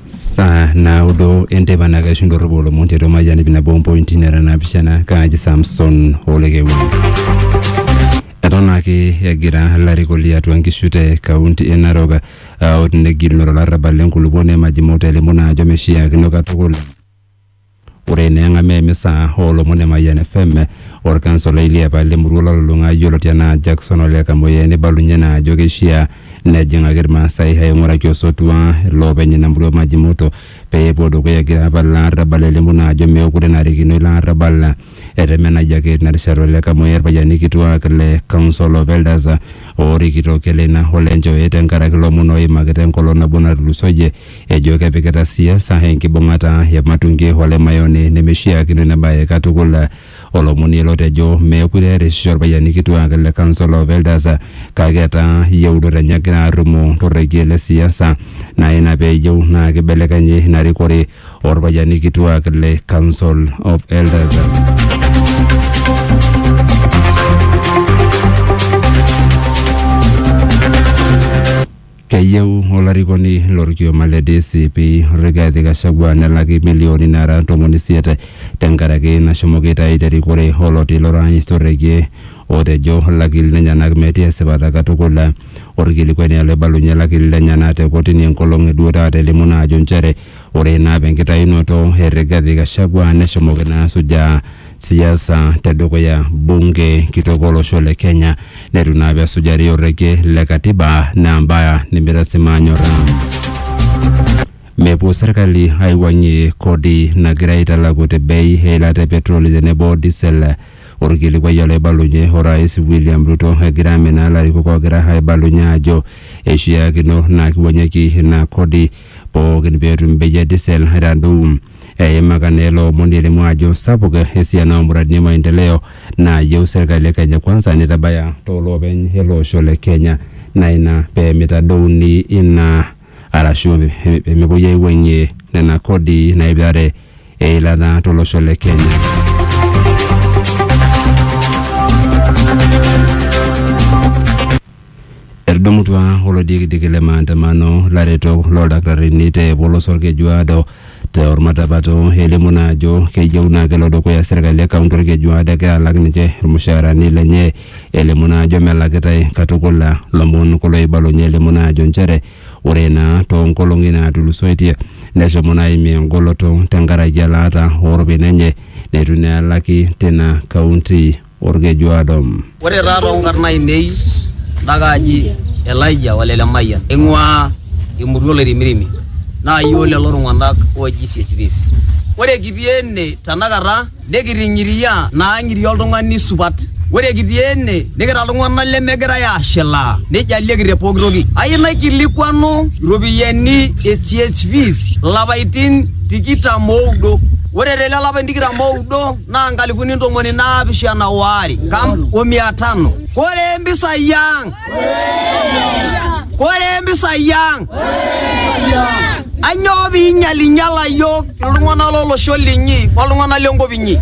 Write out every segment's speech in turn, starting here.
saa naudo enteipa naa kaishu ndorropu olomon tiatua mayian ip nabo ompointi nara naapishana kaaji samson olekeuni eton ake egira ilarikok liatua nkishu te kaunti e narok uh, otinegilunore olarrabal lenkulupuoni emajimau telimu naa ajo meshiakino katukul Ore eneng'amaa emisa oolomon e Mayian FM, olkansolai liapa le murua ololulung'a yioloti anaa Jackson Ole Kamoyia neibalunye naa ajo keishiaa nejing'aki Ilmaasai aing'uraki osotua iloopeny ina murua Maji Moto pee epuo dukuya egira apal ilo arabal elimu naa ajo meekure enarikino ilo arabal. Etemenayia ake tina rishata Ole Kamoyia ilpayiani kituaak le Council of Elders oorikito Keleina o Lenjoe tenkaraki ilomon ooimaki te nkolong nabo natulusoyie. ejo kepikita siasa enkibung'ata e Matunge o Lemayoni nemeishiakino ina bae katukul. Olomoni ele otejo meekure erisisho ilpayiani kituak le Council of Elders kake etaa yieunot enye egira arrumoo to rrekie le siasa naa ina pee eyieu naa keibelekenyi ina rikore oo lpayiani kituak le Council of Elders. Keyieu olarikoni lo lkioma le DCP Rigathi Gachagua nelaki imilioni naara ntomoni isiet tenkaraki nashomoki aitayu te rikore oloti lorais Torekie otejo lakili lenyenak metii esipata katukul. Olkilikuai naa loibalunye lakili lenyenak te kotini enkolong e duo taata elimu naa ajo nchere ore naa apa enkitayunoto e Rigathi Gachagua neshomoki naa asujaa siasa tedukuya bunge kitok olosho le Kenya netu naa pesujari orrekie le katiba naa mbaya nimitasima anyorra. Mepuo serkali aiwuang'ie kodi nagira aitalaku te bei eilata e petroli tenebo diesel orkilikuai olaibalunye orais William Ruto egira aminaa ilarikok oogira aibalunye aajo eishiakino naa kiwuang'ieki ina kodi pookin peetum bei e diesel aitadou. Eimaka naa ele omoni elimu ajo sapuk esiana oo muradini e maendeleo naayieu serkali e Kenya Kwanza neitabaya too loopeny ele osho le Kenya naa ina pee meitadouni ina arashu pee mepuoi aiwuang'ie nena kodi naipirare eilata to losho le Kenya. Etudumutua olodikidiki le maandamano laretok loldakitarini te polosa Olkejuado te olmatapato elimu naa ajo keyieu naa kelo dukuya serkali e kaunti Olkejuado egira alak ninche ilmushaarani lenye elimu naa ajo melakitae katukul. Lomon kulo oibalunye elimu naa ajo nchere ore naa too nkolong'i naatulusoitie neshomo naa aimie engoloto tenkaraki elaata oo ropiyiani enye neitu naa elaki teina kaunti. olkeju Adam. Ore taa too nkarn aainei enda kaaji Elijah ole Lemayian, aing'uaa emurua o Loirimirimi, naa iyiook lelo tung'ana ooji CHPs. Ore kitii ene tenakata nikiting'iria naa ang'iria oltung'ani supat. Ore kitii ene nikira iltung'ana lemegirai aashilaa neijalieki te pooki toki. Ayieu naikilikuanu iropiyiani e CHPs ilapaitin tikitam ooudo. Ore te lelo apaitin tikitam ooudo. naa nkalifuni ntomoni naapishana oare nkam o mia tano kore mpisai ang kore mpisai ang anyoo piinyalinyala yiok iltung'anak lolosho linyi oltung'anak lenkop inyi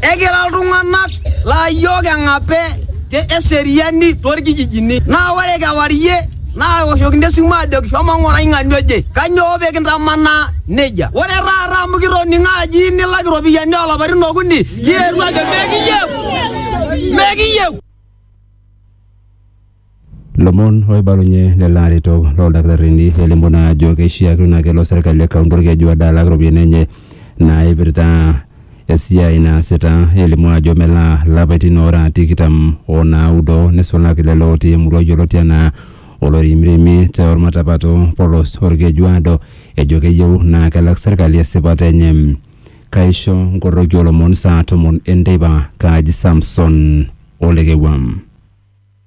ekira iltung'anak laa yiok eng'ape te eseriani torkijijini naa ore kewarie naaoshokini esimu aajoki shomo ng'orai ng'ania oje kanyoo pee kintamanaa nejia ore taata amu kitoning'o aji nilak iropiyiani oolapaitin okuni kietuo ajo mekiyieu mekiyieu Lomon oibalunye lelo aretok looldakitarini elimu naa ajo keishiakino naa kelo serkali e kaunti Olkeju ade alak iropiyiani enye naaipirta esiai naasita elimu ajo melaa lapaitin oora tikitam o naudo nisulaki lelo otii emurua yioloti anaa Olorimrimi te Olmatapato polos Olkejuado ejo keyieu naa kelak serkali esipata enye. Kaisho nkoroki olomon saa tomon enteipa Kaji Samson Olekewua.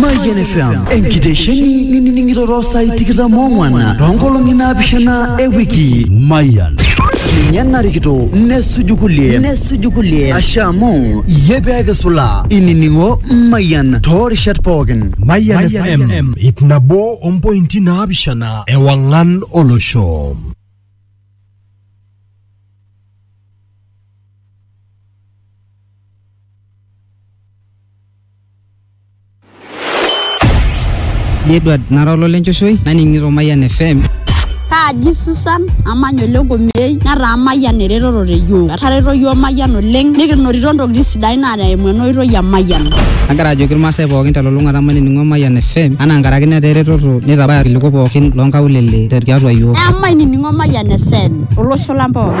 Mayian FM enkitesheni nining'iroro saai tikitam oong'wan toonkolong'i naapishana e wiki. Mayian. Ninye narikito nesuju kulie nesuju kulie ashe amu iyie pee kisula inining'o Mayian toorishat pookin. Mayian FM ip nabo ompointi naapishana ewang'an olosho. Edward nara olo lenchoshoe naning'ito Mayian FM. Kaaji Susan amanya ole Nkomiyei netaa Mayian eretoto te yiok. Etareto yiok Mayian oleng nikinotito ntokitin sidain naa eimu ena oitoi e Mayian. Agira ajoki irmaasai pookin telulung'ata mainining'o Mayian FM anaa nkaraki netaa eretoto neitabaya irkiliku pookin loonkaulele tiatua yiok. Emainining'o Mayian FM olosho lang pookin.